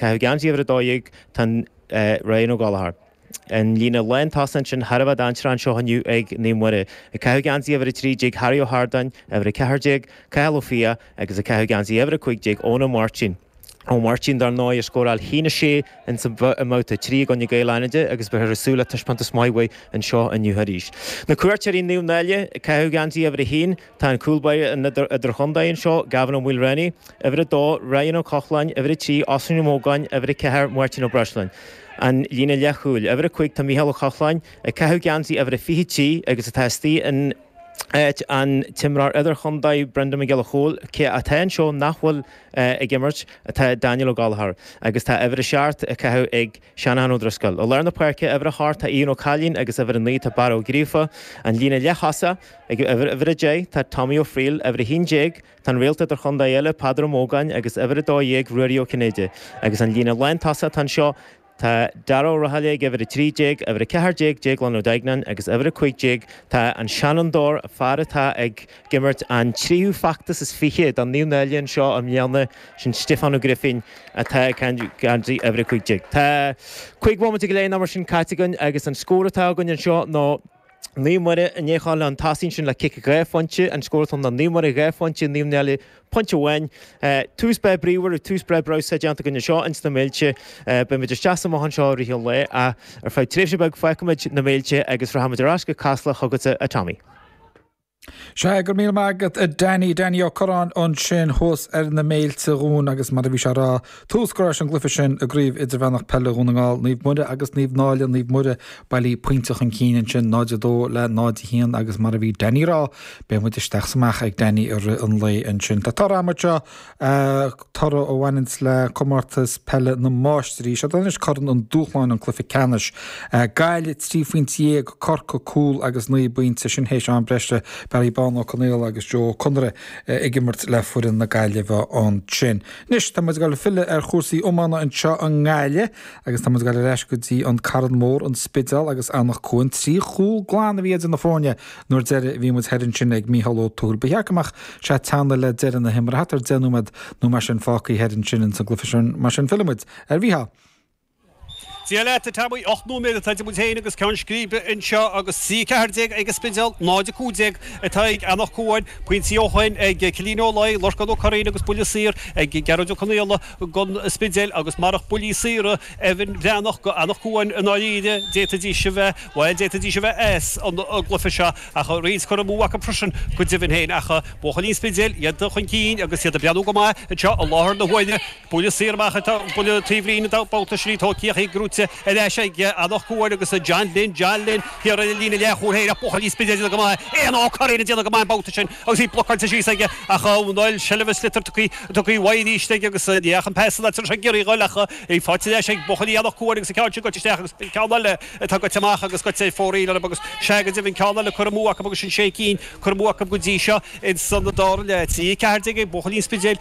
Caitheamh geansaí uimhir a dó dhéag, tá an Ryan O'Gallagher. An líne lántosaithe ansin thar a bheith dainséarach anseo inniu ag Naomh Muire. Ag caitheamh geansaí uimhir a trí déag Harry Ó hArdáin, uimhir a ceathair déag, Cathal Ó Fiaich agus ag caitheamh geansaí uimhir a cúig déag Eoin Ó Máirtín. Ó Máirtín dar ndóigh a scóráil a haon a sé insan mbabhta a trí i gcoinne Gaeil Fhánaide agus beifear ag súil le taispeántas maith uaidh anseo inniu arís. Na Cuairteoirí Naomh Náille, ag caitheamh geansaí uimhir a haon, Tá an cúl báire idir-chontae anseo, Gavin Ó Maoilreánaigh, uimhir 2, Ryan Ó Cochláin, uimhir 3, Oisín Ó Mógáin, uimhir 4, Máirtín Ó Breisleáin, an líne leathchúil. Uimhir 5, tá Micheál Ó Cochláin, ag caitheamh geansaí uimhir a 23 agus atá istigh in áit an t-imreoir idir-chontae, Brendan Mac Giolla Chomhaill, atá anseo nach bhfuil ag imirt, tá Daniel Ó Gallchóir agus tá uimhir a seacht á chaitheamh ag. Seanán Ó Drisceoil. I lár na páirce, uimhir a hocht, tá Ian Ó Cailín agus uimhir a naoi tá Barra Ó Gríofa, an líne leath-thosaigh, ag uimhir a deich tá Tommy Ó Frighil, uimhir a haon déag tá an réalt idir-chontae eile Peadar Ó Mógáin agus uimhir a dó dhéag Ruairí Ó Cinnéide agus an líne lán-tosaigh atá anseo tá Dara Ó Rathaille ag uimhir a trí déag, uimhir a ceathair déag Déaglán Ó Duigneáin agus uimhir a cúig déag tá an seanfhondúir, fear atá ag. imirt an tríú feachtas is fiche do Naomh Náille anseo i mbliana, sin Stiofán Ó Grifín atá ag caitheamh uimhir 15. Tá cúig bhomaite go leith nó mar sin caite againn agus an scór atá againn anseo ná Naomh Muire i ndiaidh a ghabháil chun tosaigh ansin le cic dhá phointe, an scór atá ná Naomh Muire dhá phointe, Naomh Náille pointe amháin. Tús breá bríomhar, tús breá breabhsánta déanta againn anseo ins na Méilte. Beidh muid isteach is amach anseo i rith an lae ach ar feadh tréimhse beag fágfaimid na Méilte agus rachaimid ar ais go Casla chugatsa a Tommy. Sea, go raibh míle maith agat a Danny, Danny Ó Curráin ansin thuas ar na Méilte dhúinn agus mar a bhí sé a rá tús curtha leis an gcluiche sin i gCraobh Idirmheánach Peile Dhún na nGall, Naomh Muire agus Naomh Náille, Naomh Muire bailithe pointe chun cinn ansin 0-2 le 0-1 agus mar a bhí Danny a rá beidh muid isteach 's amach ag Danny i rith an lae ansin. Tá toradh anseo. ag toradh a bhaineanns le Comórtas Peile na Máistrí. Siod anois Corn an Dúshláin, an cluiche ceannais. Gaillimh trí phointe dhéag, Corcaigh cúl agus naoi bpointe, sin théis am breise. Barry Bán Ó Conaola agus Joe Ó Conaire ag imirt le foireann na Gaillimhe ansin. Anois tá muid ag dul ag filleadh ar chúrsaí iomána anseo i nGaillimh agus tá muid ag dul ar ais go dtí an Carn Mór, an Spidéal agus Anach Cuain. Trí chúl glan a bhí idir na foirne An uair dheiridh a bhí muid thoir ansin ag Mícheál Ó Tuathail ba cheart go mbeadh sé ag teannadh le deireadh na himeartha, thart ar deich nóiméad nó mar sin fágtha thoir ansin ins an gcluiche sin, mar sin fillfidh muid ar Mhícheál. Dia leat, a Tommy. Ocht nóiméad atá idir muid féin agus ceann scríbe anseo agus trí, a ceathair déag ag an Spidéal, náid, a cúig déag atá ag Eanach Cuain, pointí ó shoin ag Cillian Ó Laoi, Lorcán Ó Curraoin agus buille saor ag Gearóid Ó Conaola don Spidéal agus marach buillí saora, Evan Breathnach go Anach Cuain i ndáiríre, d'fhéadfaidís a bheith, bhuel, d'fhéadfaidís a bheith sa gcluiche seo ach roinnt curtha amú acu freisin go deimhin féin ach buachaillí an Spidéil, iad chun cinn agus iad ag breathnú go maith anseo i láthair na huaire, buille saor amach ag buille taobhlíne an babhta sin, Tóicíoch í gnóite ar ais ag Anach Cuain agus John Linn, John Linn, thiar ar an líne leath-chúil féin ach buachaillí an Spidéil ag déanamh go maith, Éanna Ó Curraoin ag déanamh go maith an babhta sin. agus í blocáilte síos aige, ach ar ndóigh seilbh an tsliotair tugtha uaidh arís aige agus ní dheachaigh an pas san áit a raibh sé ag iarraidh a dhul ach í faighte anois ag buachaillí Anach Cuain agus an ceann sin goite isteach agus an ceann eile atá goite amach agus goite ar fóraoil orthu agus sea go deimhin ceann eile curtha amú acu agus sin sé cinn curtha amú acu go dtí seo ins an dara leath. Trí a ceathair déag ag buachaillí an Spidéil.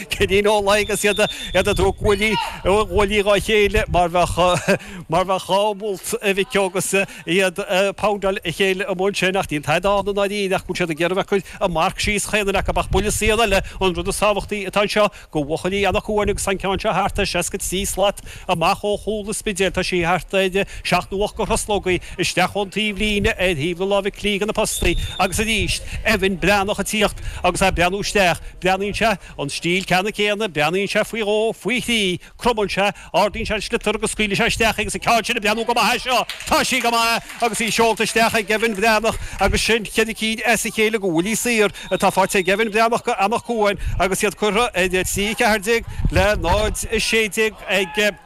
Finín Ó Laoi agus iad ag tabhairt guaillí dhá chéile mar bheadh mar bheadh dhá mholt a mhic ó agus iad ag poundáil a chéile amuigh ansin ach níl tada ann i ndáiríre ach go bhfuil siad ag iarraidh a bhfeiceáil an marc síos chaon fhear acu ach buille saor eile an rud is tábhachtaí atá anseo go bhuachaillí Anach Cuain agus tá an ceann seo thart ar seasca trí slat Amach ó chúl an Spidéil tá sí thart ar sheacht nó ocht go thruslógaí, isteach ón taobh líne ar thaobh na láimhe clí de na postaí agus arís Evan Breathnach ag tíocht agus é ag breathnú isteach. Breathnaíonn sé, an stíl ceanna céanna, breathnaíonn sé faoi dhó, faoi thrí, cromann sé, ardaíonn sé an sliotar agus scaoileann sé isteach í agus an ceann sin ag breathnú go maith as seo. Tá sí go maith agus í seolta isteach ag Evan Breathnach agus sin cheithre cinn as a chéile go bhuillí saor. Tá faighte ag Evan Breathnach go Anach Cuain agus iad curtha in 3:14 le 0:16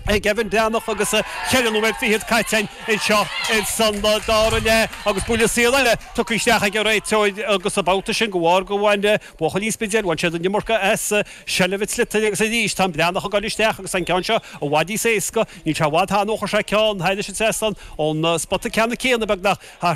ag Evan Breathnach agus ceithre nóiméad fichead caite anseo insa dara leath agus buille saor eile tugtha isteach ag an réiteoir agus an babhta sin go bharr go bhain buachaillí an Spidéil bhain siad an iomarca as seilbh an tsliotair agus arís tá an Breathnach ag goil isteach agus tá an ceann seo i bhfad níos éasca níl sé i bhfad ó chroch sé ceann thairis an trasnán ón spota ceanna céanna beagnach thart